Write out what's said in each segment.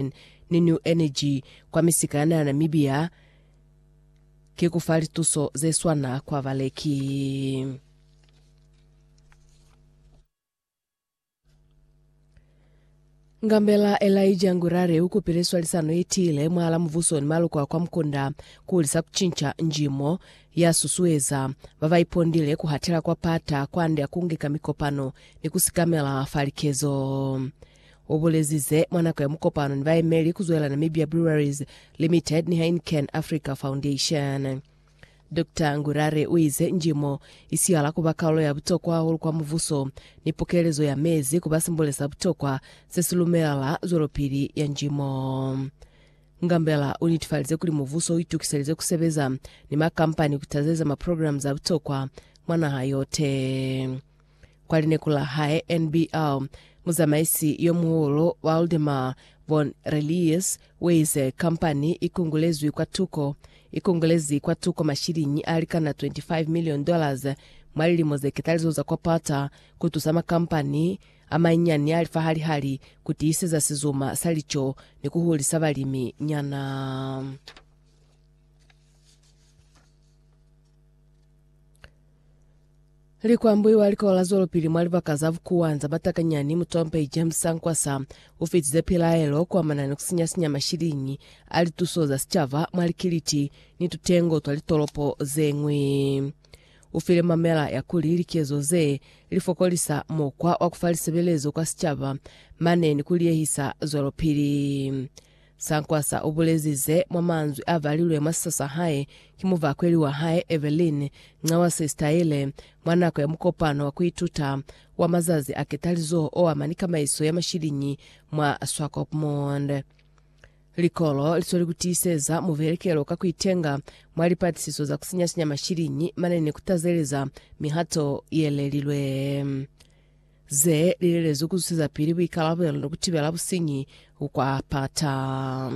Foundation ni New Energy kwa misika ya naha Namibia ki ku fa lituso ze swana kwa baleki. Ngambela Elijah Ngurare ukupile swalisano yetiile mwahala muvuso ni maluko a kwa Mkunda kuhulisa kucinca njimo ya susueza babaipondile kuhatela kwa pata kwande akungika mikopano ni kusikamela fa likezo. ubulezize mwa nako ya mukopano ni baemeli kuzwela Namibia Breweries Limited ni Heineken Africa Foundation. Dr. Ngurare uize njimo isihala kuba kaulo ya butokwa hahulu kwa muvuso ni pokelezo ya mezi kuba simbole sa butokwa sesilumela zwelopili ya njimo. Ngambela unitifalize kuli muvuso uitukiselize kusebeza ni makampani kutazeza maprograme za butokwa mwa naha yote. Kwa lineku la hae NBL, muzamaisi yo muhulu Waldemar von Relius uize, Kampani i kungulezwi kwa tuko. I kungulezi kwa tuko mashiliñi a likana 25 million dollars mwa lilimo ze ketalizo za kwa pata ku tusa makampani a manyinyani a lifahali-hali ku tiiseza sizuma sa lico ni ku hulisa balimi nyana. Likwambui wa likola la zwelopili mwa libaka za bukuwanza ba takanyani mutompei James Sankwasa ufitize pilaelo kuamana ni kusinya-sinya mashiliñi a lituso za sicaba mwa likiliti ni tutengo twa litolopo zeñwi. Ufile mamela ya kuli likezo ze lifokolisa mukwa wa kufa lisebelezo kwa sicaba mane ni kuliehisa zwelopili. Sankwasa u bulezi ze mwa manzwi a balilwe mwa siso sa hae ki muvakweli wa hae Evelyn, nca wa Sesitayele, mwa nako ya mukopano wa ku ituta wa mazazi a ketalizoho o ama ni kamaiso ya mashiliñi mwa Swakopmund. Likolo li sweli ku tiiseza muvelekelo ka ku itenga mwa lipatisiso za ku sinya-sinya mashiliñi mane ni ku tazeleza mihato ye lelilwe. ze li lelezwi ku zusezapili buikalabelo ni ku tibela businyi ku kwa pata.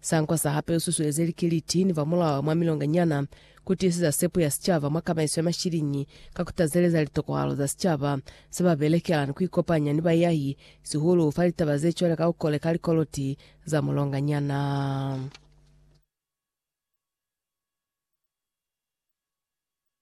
Sankwa sa hape u susueze likiliti ni ba mulao mwa milonga nyana ku tiiseza sepo ya sicaba mwa kamaiso ya mashiliñi ka ku tazeleza litokahalo za sicaba se ba belekela ni ku ikopanya ni baiahi, sihulu fa litaba ze cwale ka ku koleka likoloti za mulonga nyana.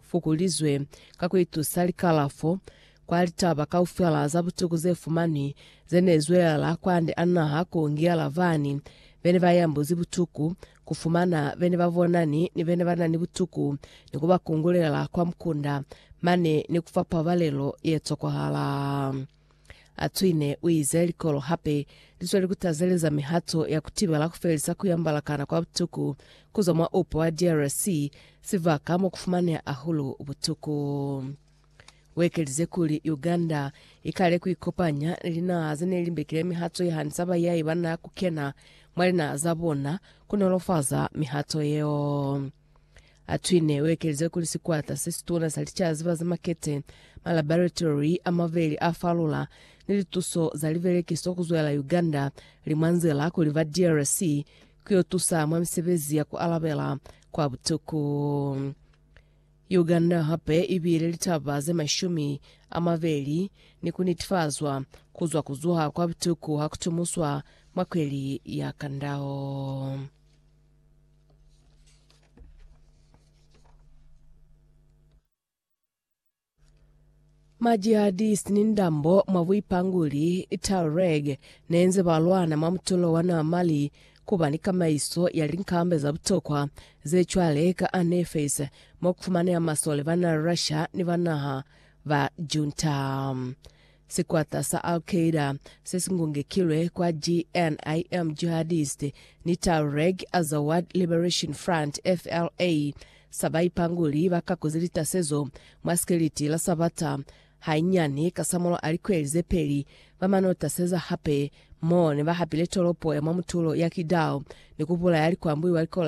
fukulizwe ka ku itusa likalafo kwa litaba kaufela za butuku ze fumanwi ze ne zwelela kwande a naha ku ngiyela bani be ne ba yambuzi butuku, ku fumana bene ba bonani ni bene ba na ni butuku ni ku ba kungulela kwa mukunda mane ni ku fa pabalelo ye tokwahala. A cwine, u ize, Likolo hape li sweli ku tazeleza mihato ya ku tibela ku felisa ku yambala kana kwa butuku ku zwa mwa upo wa DRC, sibaka mo ku fumaneha hahulu butuku. U ekelize kuli, Uganda i kale ku ikopanya ni linaha ze ne li mbekile mihato ye hanisa bayai ba na ku kena mwa linaha za bona ku nolofaza mihato yeo. Atwine uekelize kuli sikwata sesituna sa licazi ba za makete, malaboratory amabeli a falula, ni lituso za libelekiso kuzwela Uganda li mwa nzila kuli ba DRC kuyo tusa mwa misebezi ya kualabela kwa butuku. Uganda hape ibile litaba ze mashumi amabeli ni kunitifazwa kuzwa kuzuha kwa butuku hakutumuswa mwa kweli ya kandao. Ma jihadist ni ndambo mwa buipanguli, Tuareg, nenze ba lwana mwa mutulo wa na Mali kuba ni kamaiso ya linkamba za butokwa ze cwale ka Anefes mo kufumaneha masole ba na Russia ni ba naha ba Junta. Sikwata sa Al-Qaeda se si ngungekilwe kwa JNIM, Jihadist ni Tahreg Azawad Liberation Front, FLA, sa ba ipanguli ba kakuzi litasezo mwa sikiliti la Sabata. Hainyani kasamulaho a likweli ze peli, ba mano taseza hape mo ne ba hapile tolopo ya mwa mutulo ya Kidal ni ku bulaya likwambuli wa likola